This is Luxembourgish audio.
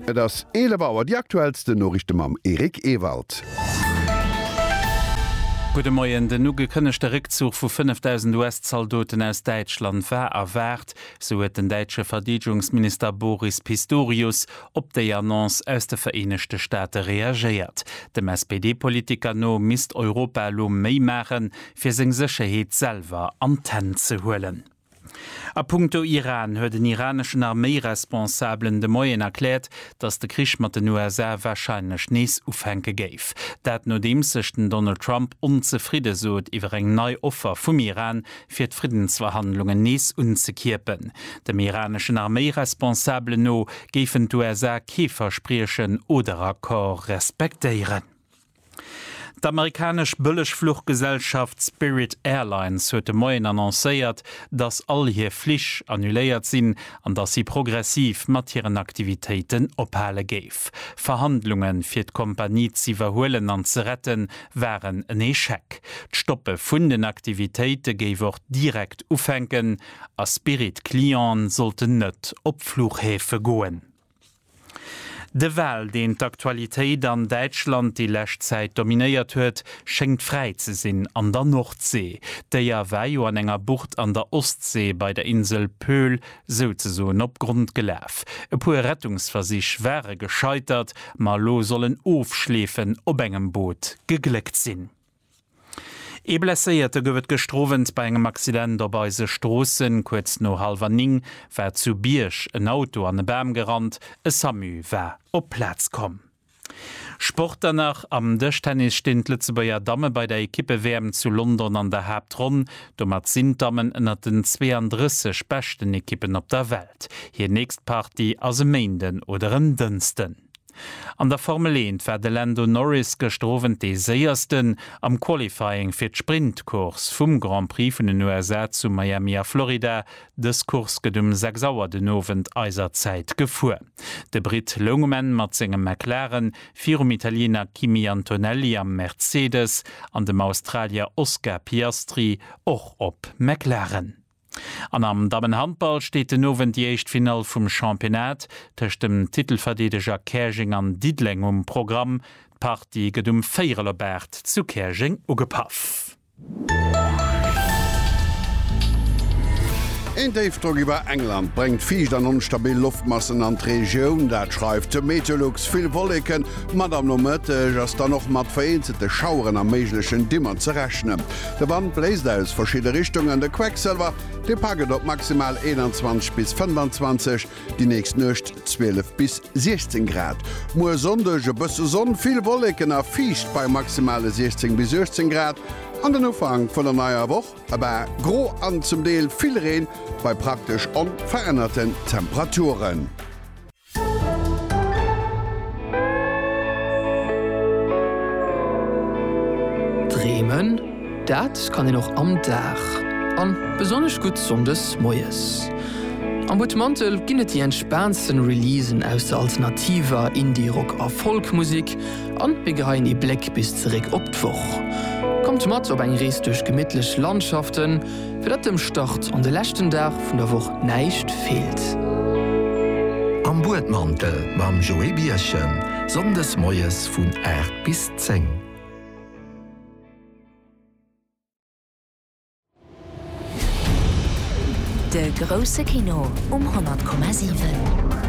Et ass 11 Auer, déi aktuellsten Noriichte mam Eric Ewald. Gudde Moien. Den ugekënnegte Réckzuch vu 5.000 US-Zaldoten aus Däitschland war erwaart, sou huet den däitsche Verdeedegungsminister Boris Pistorius op déi Annonce aus de Vereenegte Staate reagéiert. Dem SPD-Politiker no misst Europa elo méi maachen, fir seng Sécherheet selwer an d'Hänn ze huelen. A punkto Iran huet en iraneschen Arméiresponsabelen de Moien erkläert, datt de Krich mat den USA warscheinlech nees ufänke géif. Dat nodeems sech den Donald Trump onzefridde sot iwwer eng nei Offer vum Iran, fir d'Friddensverhandlungen nees unzekierpen. Dem iraneschen Arméiresponsabelen no géifen d'USA kee Verspriechen oder Accord respektéieren. D'amerikanesch Bëllegfluchgesellschaft Spirit Airlines huet de Moien annoncéiert, dass all hir Flich annuléiert sinn an dass si progressiv mat hiren Aktivitéiten ophale géif. Verhandlunge fir d'Kompanie z'iwwerhuelen an ze rette waren en Echec. D'Stoppe vun den Aktivitéite géif och direkt ufänken a Spirit-Clienten sollten net op Fluchhäfe goen. De Wal, deen d'Aktualitéit an Däitschland déi lescht Zäit dominéiert huet, schéngt fräi ze sinn an der Nordsee. D'Déier war jo an enger Bucht an der Ostsee bei der Insel Pöhl souzesoen op Grond gelaf. E puer Rettungsversich ware gescheitert, ma elo soll en Ofschleefen op engem Boot gegléckt sinn. Ee Blesséierte gouf et gëschter Owend bei engem Accident op eise Stroossen. Kuerz no hallwer 9 war zu Bierg en Auto an e Bam gerannt. E Samu war op d'Plaz komm. Sport dann nach, Am Dëschtennis stinn d'Lëtzebuerger Damme bei der Ekippe-WM zu London an der Haaptronn. Domat sinn d'Dammen ënnert den 32 beschten Ekippen op der Welt. Hir nächst Partie ass e Méinden oder en Dënsten. An der Formel Eent war de Lando Norris gëschter Owend dee Séiersten am Qualifying fir d'Sprint-Course vum Grand Prix vun den USA zu Miami a Florida. Dës Course gëtt um 6 Auer den Owend eiser Zäit gefuer. De Britt loung um Enn mat sengem McLaren virum Italiener Kimi Antonelli am Mercedes an dem Australier Oscar Piastri och op McLaren. An am Dammenhandball steet den Owend déi éischt Finall vum Championnat tëscht dem Titelverdeedeger Käerjeng an Diddeleng um Programm. D'Partie gëtt um Véierel op 8 zu Käerjeng ugepaff. Een Déifdrock iwwer England bréngt fiicht an onstabil Loftmassen an d'Regioun, dat schreift de Meteolux. Vill Wolleken mat am Nomëtteg ass dann och mat vereenzelte Schaueren a méiglechen Dimmer ze rechnen. De Wand bléist aus verschidde Richtungen, de Quecksëlwer, dee packt et op maximal 21 bis 25, déi nächst Nuecht 12 bis 16 Grad. Muer Sonndeg e bësse Sonn, vill Wolleken a fiicht bei maximale 16 bis 18 Grad an den Ufank vun der neier Woch e bal gro an zum Deel vill Reen bei praktesch onverännerte Temperaturen. Dreemen, dat kann een och am Dag, an besonnesch gutt Sonndes moies. Am Butmantel ginn et déi entspaantsten Releasen aus der alternativer, Indie, Rock a Folk Musik, an mir geheien ee Bléck bis zeréck op d'Woch. Kommt mat op eng Rees duerch gemittlech Landschaften. Fir datt dem Start an de leschten Dag vun der Woch näischt feelt. Am Buedmantel mam Joé Bierchen, Sonndes moies vun 8 bis 10. De grousse Kino um 100,7.